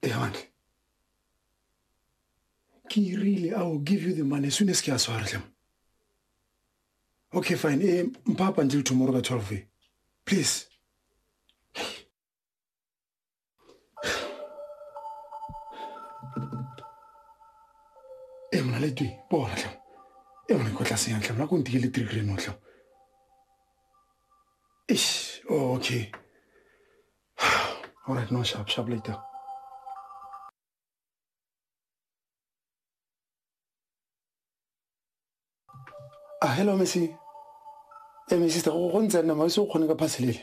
Evan, ke really I will give you the money as soon as ke a swara tlem. Okay, fine. Eh, mpha up until tomorrow ka 12 eh. Please. Eh, mna le twi, bo ra tlem. Eh, mna ko tla senya tlem, la ko ntike le 3 grand o tlem. Ish, oh, okay. All right, no, sharp, sharp later. Ah, hello, Missy. Hey, my sister, go ntse nna, ma se o kgone ka phaselele.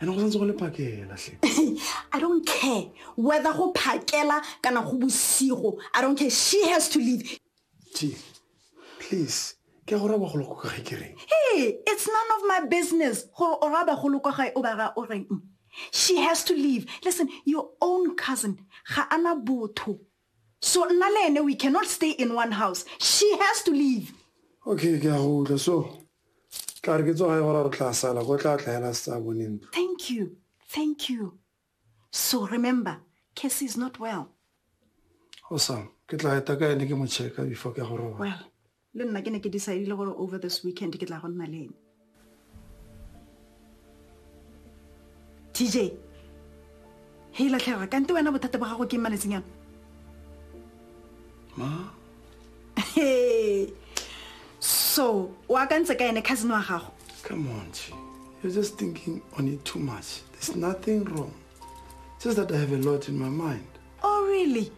ene go santse go le phakela hle i don't care whether go phakela kana go bosigo i don't care she has to leave t please ke gore ba golo kwa gae ke reng hey it's none of my business gore o ra ba golo kwa gae o ba ra o reng she has to leave listen your own cousin ga ana botho so nna le ene we cannot stay in one house she has to leave okay ke a go utlwa so tla re ke tsoga e gore re tla sala go tla tlaela se tsa bone ntlo thank you thank you so remember casey is not well awesome ke tla eta ka ene ke mo checka before ke go roba well le nna ke ne ke decidile gore over this weekend ke tla go nna le ene tj he latlhega kante wena bothata ba gago ke mmaletseng yana ma so o akantse ka ene cousin wa gago come on tje you're just thinking on it too much there's nothing wrong just that i have a lot in my mind oh really